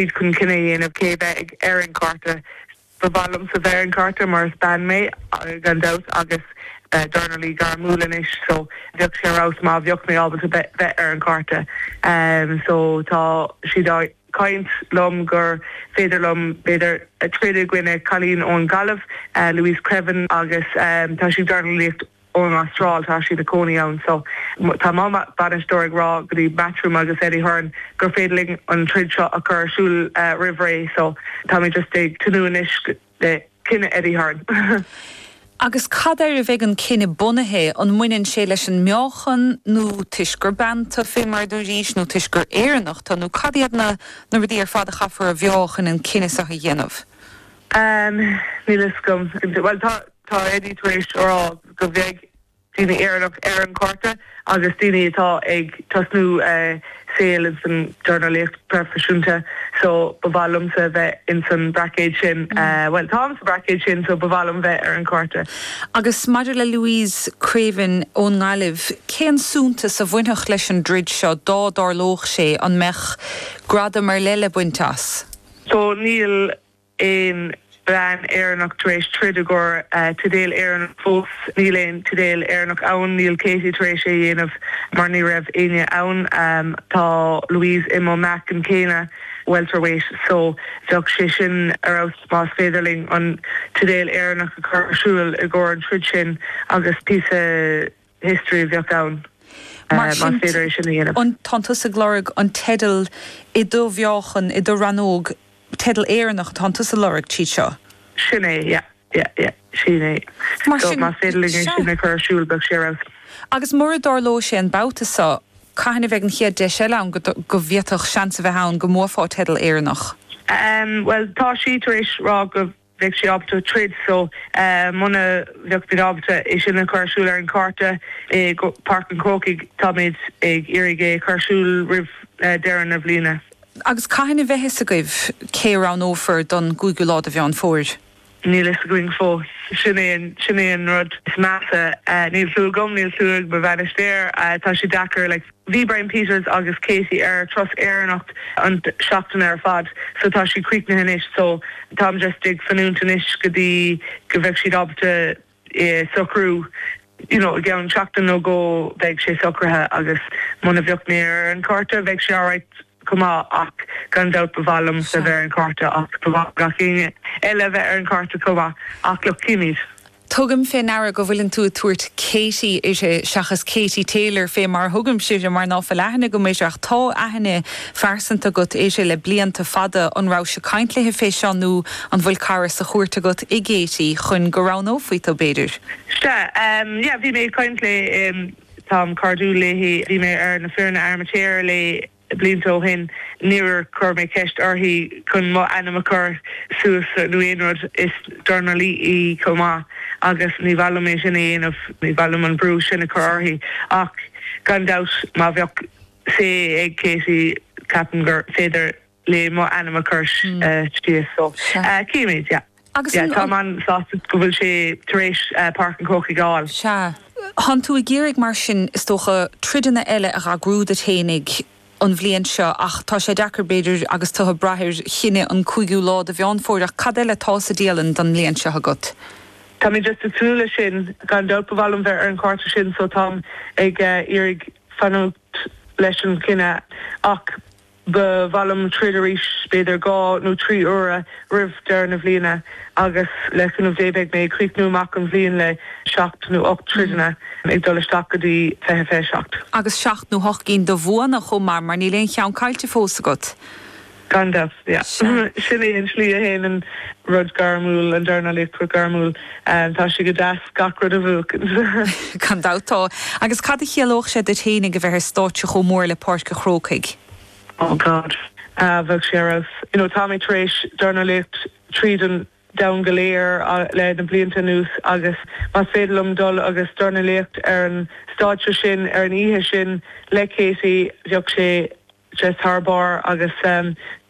chun cinneadh a dhéanamh cé a bheith ag ar an chárta. Ba mhaith liomsa bheith ar an chárta mar is bean mé gan dabht agus dornálaí gairmiúil anois so bheadh sé ar fheabhas má bheadh mé ábalta bheith ar an chárta so tá siad ag caint liom gur féidir liom b'fhéidir troid i gcoinne cailín ón Ghaillimh, Louise Creaven agus tá sí ag dornálaíocht. ón Astráil, tá sí ina cónaí ann. So tá mo bhainisteoir ag rá go dtí Matchroom agus Eddie Hearn gur féidir linn an troid seo a chur ar siúl roimh ré. So táimid just ag tnúth anois le cinneadh Eddie Hearn. Agus cad air a bheidh an cinneadh bunaithe? An mbaineann sé leis an meáchan nó toisc gur bean tu, fé mar a dúraís, nó toisc gur Éireannach tu, nó cad iad na rudaí ar fad a chaithfear a mheáchan chun an cinneadh seo a dhéanamh? níl fhios agam. Bhuel, tá, tá Eddie tar éis a rá go bheidh daoine Éireannach ar an chárta agus daoine atá ag tosnú saol ins an dornálaíocht proifisiúnta so ba mhaith liomsa bheith ins an braicéad sin, bhuel, táim sa braicéad sin so ba mhaith liom bheith ar an chárta. Agus maidir le Louise Creaven ón nGaillimh, cén suntas a bhainfeadh leis an dtroid seo dá dtarlódh sé, an mbeadh gradam ar leith le baint as? So níl, aon bhean Éireannach tar éis troid i gcomhair teideal Éireannach fós. Níl aon teideal Éireannach ann. Níl Katie tar éis é a dhéanamh mar ní raibh éinne ann. Tá Louise i mo meáchan céanna, welterweight, so bheadh sé sin ar fheabhas más féidir linn an teideal Éireannach a chur ar siúl i gcomhair an troid sin agus píosa history a bheadh ann más féidir é sin a dhéanamh. Tánn tusa ag lorg an teidil i do mheáchan, i do rannóg, teideal Éireannach atánn tusa a lorg tríd seo? Sin é, yeah, yeah, yeah, sin é. Mar sin, más féidir linn é sin a chur ar siúl, bheadh sé ar fheabhas. Agus mura dtarlóidh sé an babhta seo, cathain a bheidh an chéad deis eile ann go bhféadfadh seans a bheith ann go mbuafá teideal Éireannach? Bhuel, tá sí tar éis rá go. bheadh sí ábalta troid so muna bheadh muid ábalta é sin a chur ar siúl ar an chárta i bPáirc an Chrócaigh. Táimid ag iarraidh é a chur ar siúl roimh deireadh na bliana. Agus cathain a bheidh fhios agaibh cé a roghnófar don gcúigiú lá de Mheán Fómhair? Níl fhios againn fós. Sin é an rud is measa. Níl súil agam, níl súil ag mo bhainisteoir. Tá sé deacair. Bhí Brian Peters agus Katie ar turas Éireannach an seachtain ar fad so tá siad críochnaithe anois so táim just ag fanúint anois go dtí go bheadh siad ábalta é socrú you know i gceann seachtain nó dhó bheidh sé socraithe agus muna bheadh mé ar an cárta bheidh sé alright. cuma ach gan dabht ba mhaith liomsa a bheith ar an chárta ach ba mhaith le gach éinne eile a bheith ar an chárta chomh maith ach chímid. Tugaim fé ndeara go bhfuileann tú ag tabhairt Katie uirthi seachas Katie Taylor fé mar a thugaimse uirthi mar ná fuil aithne agam uirthi ach tá aithne phearsanta agat uirthi le blianta fada. An rabhais-se caint léi fé seo nó an bhfuil cara sa chúirt agat i gKatie chun go roghnófaí tú, b'fhéidir? Sea, bhí mé ag caint léi. Táim cairdiúil léi. Bhí mé ar na foirne amaitéarach léi blianta ó shin. Níor chuir mé ceist uirthi chun mo ainm a chur suas nó aon rud. Is dornálaí í chomh maith agus ní ba mhaith liom é sin a dhéanamh. Ní ba mhaith liom an brú sin a chur uirthi. Ach gan dabht má bheadh say ag Katie ceapaim gur féidir. léi mo ainm a chur síos. Chímid, yeah. Agus an. Táim an-sásta go bhfuil sí tar éis Páirc an Chrócaigh a fháil. Sea. Tánn tú ag iarraidh mar sin, is dócha, troideanna eile a dh'eagrú duit féinig an bhliain seo ach tá sé deacair, b'fhéidir, agus tú ag braith ar chinneadh an 5ú lá de Mheán Fómhair ach cad eile atá sa dialann don mbliain seo agat? Tá mé just ag tnúth leis sin, gan dabht, ba mhaith liom bheith ar an chárta sin so táim ag iarraidh fanúint leis an chinneadh ach. Ba mhaith liom troid arís, b'fhéidir dhá nó trí huaire roimh deireadh na bhliana, agus le cúnamh Dé beidh mé ag críochnú amach an bhliain le seacht nó ocht dtroideanna, ag dul isteach go dtí fiche fiche seacht. Agus seacht nó hocht gcinn de bhuanna chomh maith, mar níl aon cheann caillte fós agat. Gan dabht, sea. Sin é an tslí a théann an rud gairmiúil, an dornálaíocht gairmiúil. Ahh, tá sé go deas gach rud a bhuacaint. Gan dabht, tá. Agus cad a chiallódh sé duit fhéinig a bheith ar stáitse chomh mór le Páirc a' Chrócaigh? Oh God. Ahh, bheadh sé ar fheabhas. You know, tá mé tar éis dornálaíocht tríd an domhan go léir le na blianta anuas agus más féidir liom dul agus dornálaíocht ar an stáitse sin ar an oíche sin le Katie, bheadh sé just thar barr agus,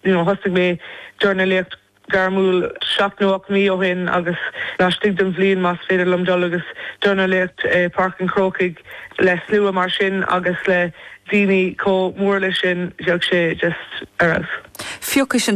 you know, thosnaigh mé dornálaíocht. gairmiúil seacht nó ocht mí ó shin agus laistigh den bhliain, más féidir liom dul agus dornálaíocht i Páirc an Chrócaigh le slua mar sin agus le daoine chomh mór leis sin, bheadh sé just ar fheabhas. Phiocais an